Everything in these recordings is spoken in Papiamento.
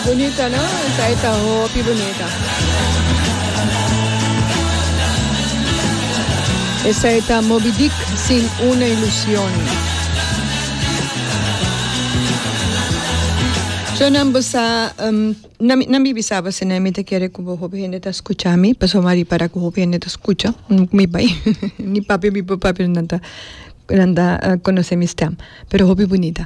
Bunita no esai ta hopi bunita. Esai ta Moby Dick sin una ilusion. Cho nan bo sa um, nan, nan bibi sa base nan mi te kere ku bo hopi hende ta skucha mi paso ma ripara ku hopi hende ta skucha mm, mi bai ni papi mi pa papi nan ta nan ta uh, konosé mi stem pero hopi bunita.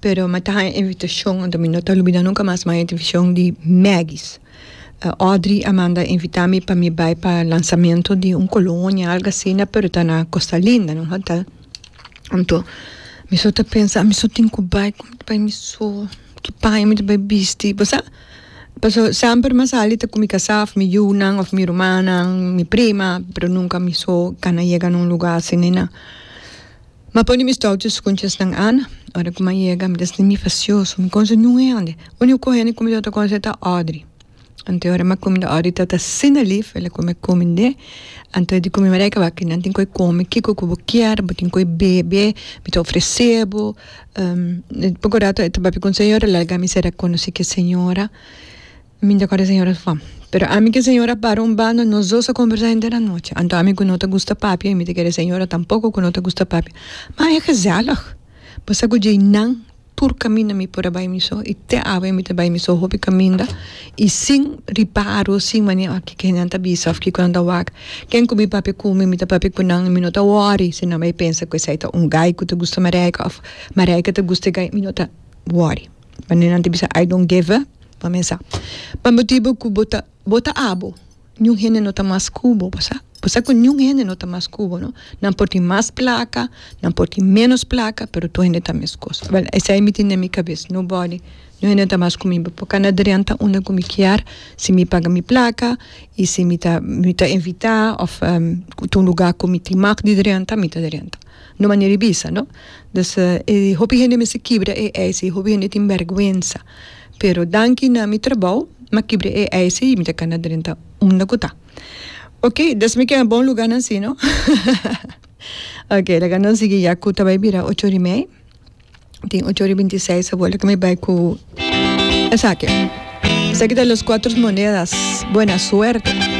Pero mi ta haña invitashon, anto mi no ta lubida nunka mas, mi haña invitashon di Maggie's. Audrey a manda invitá mi pa mi bai pa lansamentu di un kolonia, algu asina, pero ta na Kosta Linda, na un hotèl. Anto mi so ta pensa, mi so tin ku bai, kon mi ta bai mi so, ki paña mi ta bai bisti, bo sa? Pasobra semper mi a sali ta ku mi kasá, mi yunan òf mi rumannan, mi prima, pero nunka mi so, ka na yega na un lugá asina. M'a pone mis touches cu un chesnan Ana. Ora cu m'a yega, mi ta slinbi facioso. Mi conse niun hende. Unico hende cu mi tabata conse ta Audrey. Anto ora m'a cuminda Audrey tabata asina lief, el a cume e cumind'é. Anto di cu mi Marijke, wak, nan tin cu e cume, kico cu bo kier, bo tin cu e bebe, mi ta ofrece bo. Poco rato e ta papia cu un señora, lalga mi cera conoce ki e señora. Mi ta kore señora Fam. Pero ami ke señora para un banda nos dos a kombersá hende na nochi. Anto ami ku no ta gusta papia i mi ta kere señora tampoko ku no ta gusta papia. Ma e gezèllig. Bo sa ku djei nan tur kaminda mi por a bai mi so i te awe mi ta bai mi so hopi kaminda i sin riparo sin manera a kiko nan ta bisa of kiko nan ta wak. Ken ku mi papia ku mi mi ta papia ku nan i mi no ta wòri si nan bai pensa ku esei ta un gai ku ta gusta Marijke of Marijke ta gusta e gai mi no ta wòri. Manera nan ta bisa I don't give a. pa mesa. Pa motibu cu bo ta, bo ta abo, niun hende no ta mas cu bo, bo sa. Bo sa cu niun hende no ta mas cu bo, no. Nan por tin mas placa, nan por tin menos placa, pero tur hende ta mescos. Bel, esai mi tin den mi cabes, nobody, niun hende no ta mas cu mi, bo por cana drenta unda cu mi kier, si mi paga mi placa, y si mi ta, mi ta invita, of cu ta un lugar cu mi tin mag di drenta, mi ta drenta. No manera di bisa, no. Dus, e hopi hende mester kibra e eis, e hopi hende tin bergwensa. Pero danki na mi trabou m'a kibre e eisi i mi ta ka na drenta unda ku ta. Ok, des mi keda bon lugánan si no? Ok, laga nos sigui ya ku ta bai bira ocho ora i mei. Tin ocho ora i binti seis awor laga mi bai ku esaki. Esaki ta Los Cuatros Monedas. Buena suerte.